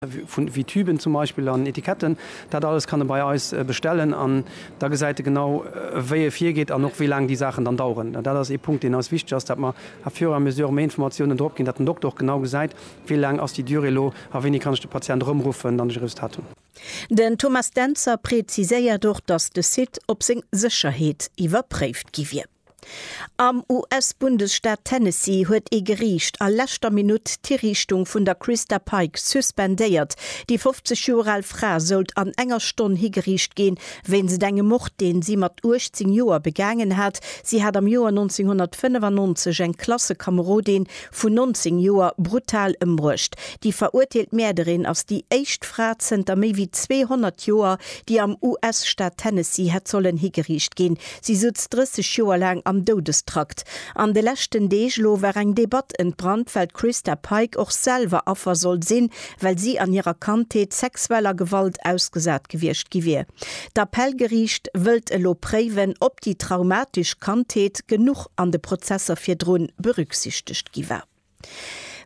wéi Tüben zum Beispill an Etiketten, dat alles kann e bei eis bestellen an da gesäit e genau wéi e virgeet an och wéi laang déi Saachen dann daueren. Dat ass ee Punkt deen eis wichteg ass, dat mer à fur et à mesure méi Informatiounen drop ginn, dat den Dokter och genau gesäit, wéi laang ass déi Durée elo a wéini kann ech de Patient erëmruffen, wann ech e Resultat hunn. Den Thomas Dentzer präziséiert och, datt de Site op seng Sécherheet iwwerpréift gi wier. Am US-Bundesstaat Tennessee huet ee Geriicht a leschter Minutt d'Hiriichtung vun der Christa Pike suspendéiert. Déi 50 Joer al Fra sollt an enger Stonn higeriicht ginn, wéinst engem Mord, deen si mat 18 Joer begaangen hat. Si hat am Joer 1995 eng Klassekamerodin vun 19 Joer brutal ëmbruecht. Déi verurteelt Mäerderin ass déi éischt Fra zënter méi wéi 200 Joer, déi am US-Staat Tennessee hätt sollen higeriicht ginn. Si sutz 30 Joer laang am Doudestrakt. An de leschten Deeg lo war eng Debatt entbrannt, well d'Christa Pike och selwer Affer sollt sinn, well si an hirer Kandheet sexueller Gewalt ausgesat gewiescht gi wier. D'Appellgeriicht wëllt elo préiwen, ob déi traumatesch Kandheet genuch an de Prozesser virdrun berücksichtegt gi war.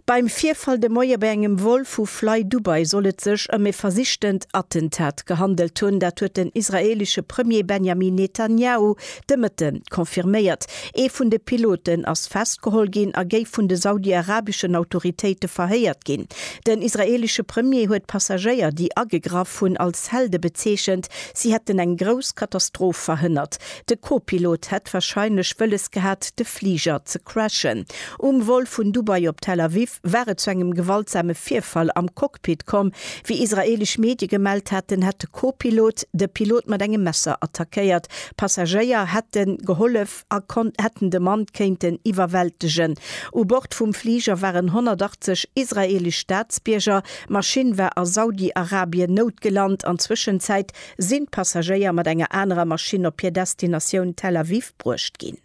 Beim Virfall de Moie bei engem Vol vu FlyDubai soll et sech ëm e versichtent Attentat gehandelt hunn. Dat huet den israeelesche Premier Benjamin Netanjahu de Mëtte confirméiert. Ee vun de Piloten ass festgeholl ginn a géif vun de saudi-arabeschen Autoritéite verhéiert ginn. Den israeelesche Premier huet d'Passagéier, déi agegraff hunn, als Helde bezeechent. Si hätten eng grouss Katastroph verhënnert. De Kopilot hätt wahrscheinlech wëlles gehat, de Fliger ze crashen. Um Vol vun Dubai op Tel Aviv war et zu engem gewaltsame Virfall am Cockpit komm. Wéi israeelesch Medie gemellt haten, hätt de Kopilot de Pilot mat engem Messer attackéiert. Passagéier hätte gehollef a hätten de Mann kéinten iwwerwältegen. U Bord vum Fliger waren 180 israeelesch Staatsbierger. D'Maschinn war a Saudi-Arabien noutgelant an Zwëschenzäit Sinn d'Passagéier mat enger anerer Maschinn op hir Destinatioun Tel Aviv bruecht ginn?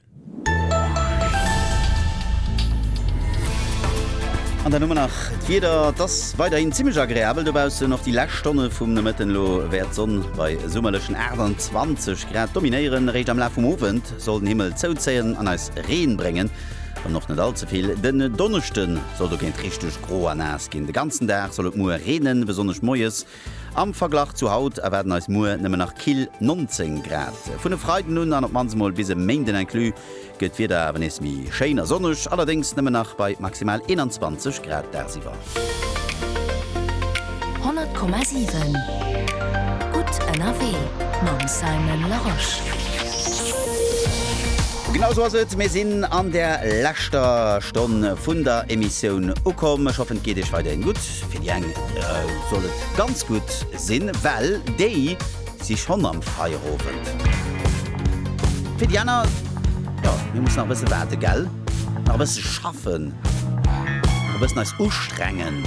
An dann hu mer nach d'Wieder. Et ass weiderhin zimmlech agreabel dobaussen. Och déi lescht Stonne vum Nomëtten elo wäert d'Sonn bei summerlechen 28 Grad dominéieren. Eréischt am Laf vum Owend soll den Himmel zouzéien an eis Reen bréngen, wann och net all ze vill. Den Donneschde soll dogéint richteg gro a naass ginn. De ganzen Dag soll et muer reenen, besonnesch moies. Am Verglach zu haut erwaarden eis muer nëmmen nach kill 19 Grad. Vun e Freiden un, an op d'mannst emol bis e Méinden inclus, gëtt d'Wieder awer nees méi schéin a sonneg, allerdéngs nëmmen nach bei maximal 21 Grad dagsiwwer. 100,7 gutt ënnerwee mam Simon Larosche. Genau esou ass et, mir sinn an der leschter Stonn vun der Emissioun ukomm. Ech hoffen et geet iech weiderhin gutt. Fir déi eng soll et ganz gutt sinn, well déi si schonn am Feierowend. Fir déi aner, jo, mir mussen nach e bësse waarden, gell? Nach e bësse schaffen, nach e bëssen eis ustrengen.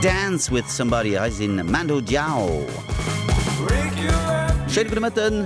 Dance with somebody, hei sinn Mando Diao. Schéine gudde Mëtten.